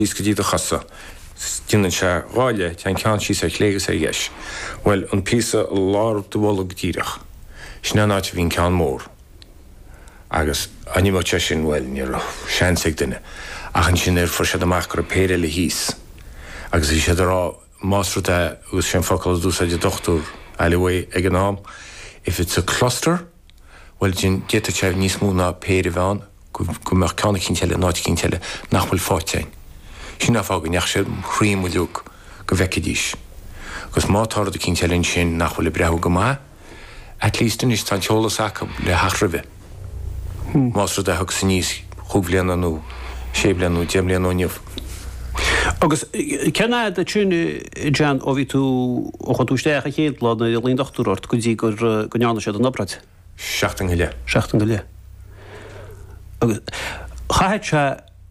síos go dtí do chosa. Déanann sé dhá leith, téann ceann síos ar chlé agus ar dheis. Bhuel, an píosa i lár do bholg díreach. Sin é an áit a bhí an ceann mór. Agus dá n-imeodh sé sin, bhuel, ní raibh seans ag duine. Ach ansin nuair a fuair siad amach go raibh péire eile thíos. Agus bhí siad ag rá, más rud é, agus sé an focal a d'úsáid an Dochtúir Allaway ag an am, if it's a cluster, Bhuel, d'fhéadfadh sé raibh níos mó ná péire a bheith ann, go mbeadh ceann eicínt eile in áit eicínt eile nach bhfuil faighte againn. Sin é an fáth go ndeachaigh sé thríom uilig go bhfeicfidís. Agus má tá rud eicínt eile ansin nach bhfuil ag breathnú go maith, at least anois tá an t-eolas acu le theacht roimhe. Más rud é a thiocfas aníos chúig bhliana nó sé bliana nó deich mbliana ó inniu, Agus cén fhad duit sin, John, ó bhí tú, ó chuaigh tú isteach an chéad lá, nuair a ghlaoigh an dochtúir ort, go dtí gur, go ndearna siad an obráid? Seachtain go leith. Seachtain go leith. Agus chaithfeadh sé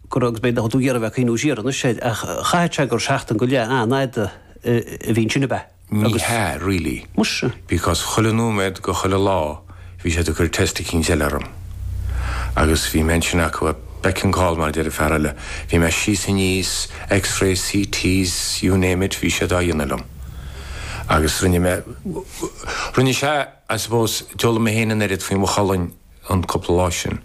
gur, agus beidh, tú ag iarraidh a bheith ag cuimhneamh siar anois, ach chaithfeadh sé gur seachtain go leith an-fhada a bhí ansin, ab ea? Ní hea, really. Muise. Because chuile nóiméad go chuile lá bhí siad ag cur test eicínt eile orm. Agus bhí mé ansin acu, a' beck and call mar a deir an fear eile, bhí mé síos aníos, X-ray, CT's, you name it, bhí siad á dhéanamh liom. Agus rinne mé, rinne sé, I suppose, d'fhoghlaim mé fhéin an oiread faoi mo cholainn an cúpla lá sin,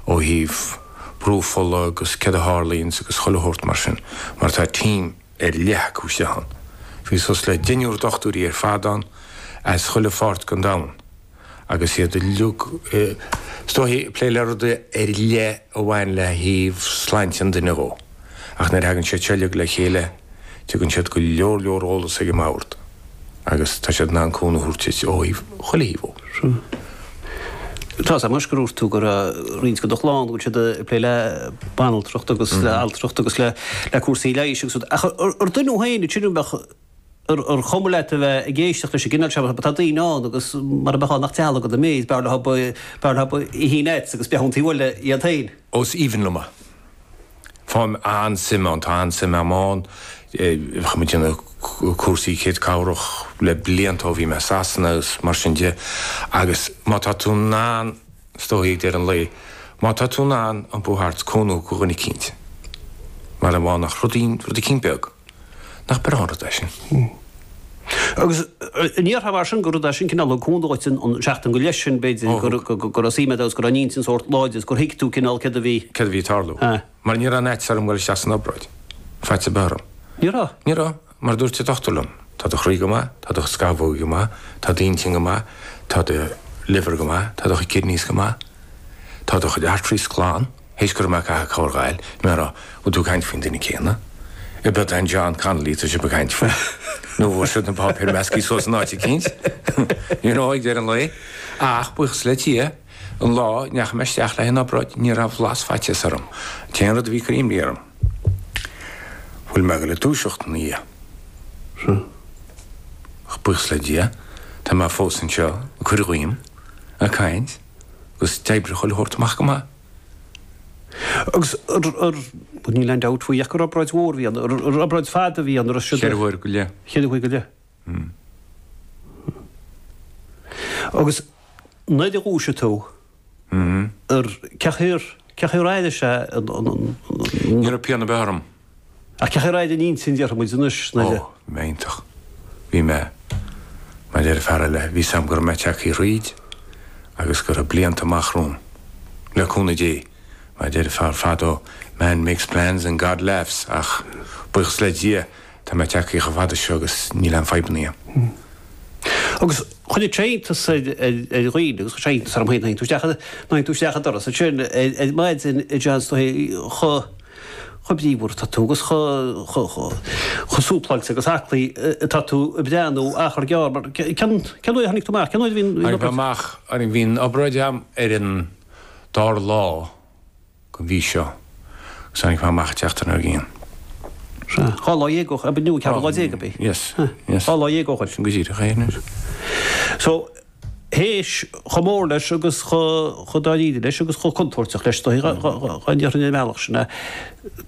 ó thaobh brú fola agus céard a tharlaíonns agus chuile shórt mar sin, mar tá team, ar leith acu seo ann. Bhí suas le deichniúr dochtúirí ar fad ann as chuile pháirt den domhan agus iad uilig, is dóichí, ag plé le rudaí ar leith a bhain le, ó thaobh sláinte an duine dhó. Ach nuair a thagann siad seo uilig le chéile, tugann siad go leor leor eolas ag an mbord. agus tá siad in ann cúnamh a thabhairt duit ó thaobh chuile thaobh dhó. Tá a fhios a'm gur dhúirt tú go raibh roinnt go do chlann go bhfuil siad ag plé le banaltracht agus le haltracht agus le le cúrsaí leighis agus rud ach ar duine thú féin ansin an mbeadh ar ar chuma leat a bheith ag éisteacht leis an gcineál seo mar tá daoine ann agus mar a mbeadh ann nach teall agat an méid b'fhearr leothab, b'fhearr leothab í fhéin ait agus a bheith ag iontú uaidh le iad féin. Ó is aoibhinn liom é. Tá an-suim a'm ann, tá an-suim a'm ann. Bhí muid ag déanamh cúrsaí céad cabhrach le blianta ó bhí mé i Sasana agus mar sin de agus má tá tú in ann, is dóigh ag deireadh an lae, má tá tú in ann iompú thart 's cúnamh go dhuine eicínt, mara mbeadh ann ach, rud, rud eicínt beag. Nach breá an rud é sin? Agus an ndéarfá mar sin gur rud é sin, cineál ag cúnamh duit an seachtain go leith sin, b'fhéidir, gur, gur, go raibh suim a't agus go raibh an intinn sórt láidir agus gur thuig tú cineál céard a bhí, céard a bhí ag tarlú. Aye. Mar ní raibh aon fhaitíos orm a dhul isteach san obráid. Faitíos ar bith orm. Ní raibh? Ní raibh, mar dúirt an dochtúir liom, tá do chroí go maith, tá do chuid scamhóga go maith, tá d'intinn go maith, tá do liver go maith, tá do chuid kidneys go maith, tá do chuid arteries glan, théis gur i Mac Comhghaill mé an bhfuil tú ag caint faoin duine céanna. Ab é John Connolly atá sibh ag caint faoi, nó an bhfuil siad na páipéir measctha suas in áit eicínt, you know, ag deireadh an lae? Ach, buíochas le Dia, an lá a ndeachaigh mé isteach le haghaidh an obráid ní raibh blas faitíos orm. Is é an rud a bhí ag cur imní orm, bhfuil mé ag dul ag dúiseacht ina dhiaidh? Ach, buíochas le Dia, tá mé fós anseo ag cur dhíom, ag caint. agus d'oibrigh chuile shórt amach go maith. Agus níl aon dabht faoi ach gur obráid mhór a bhí ann, gur obráid fada a bhí ann, bhí cheithre huaire go leith. Cheithre huaire go leith? Hum. Agus nuair a dhúisigh tú, cad a tharla? Ní raibh pian ar bith orm. Ach céard faoin intinn, déarfaidh muid anois? Ó, bhí mé iontach. Bhí mé. mar a deir fear eile, bhí 's a'm go raibh mé ag teacht thríd agus go raibh blianta amach romham. Le cúnamh Dé, mar a deireadh fear fadó, man makes plans and God laughs, ach, buíochas le Dia, tá mé tagtha chomh fada seo agus níl aon fhadhbanna a'm. Agus chuirfeadh sé iontas ar dhaoine, agus chuir sé iontas orm féin, tháinig tú isteach an doras ansin ar maidin, John, is tú é chomh. chomh bríomhar atá tú agus chomh súpláilte agus aclaí atá tú ag breathnú achar gearr, mar cén uair a tháinig tú amach, cén uair a bhí an obráid agat? Amach, bhí an obráid agam ar an dara lá den mhí seo, agus tháinig mé amach i gceann seachtaine ina dhiaidh. Sea. Dhá lá dhéag ó, ab in é, nó ceithre lá dhéag ab é? Yes, yes. Dhá lá dhéag ó shoin. Sin go díreach é, anois. So. th'éis, chomh mór leis agus chomh dáiríre leis agus chomh contúirteach leis is a bhí sé ar an mbealach sin.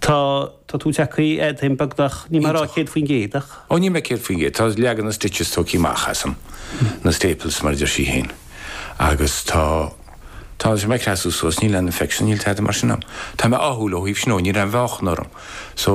Tá tú tagtha chugat féin beagnach, níl mé ag rá céad faoin gcéad ach. Ó, níl mé céad faoin gcéad, tá leath de na stitches tógtha amach asam, na staples mar a deir sí fhéin agus tá, tá, tá mé ag cneasú suas, níl an infection, níl tada mar sin a'm. Tá mé ádhúil ó thaobh sin ó, níl aon mheáchan orm so,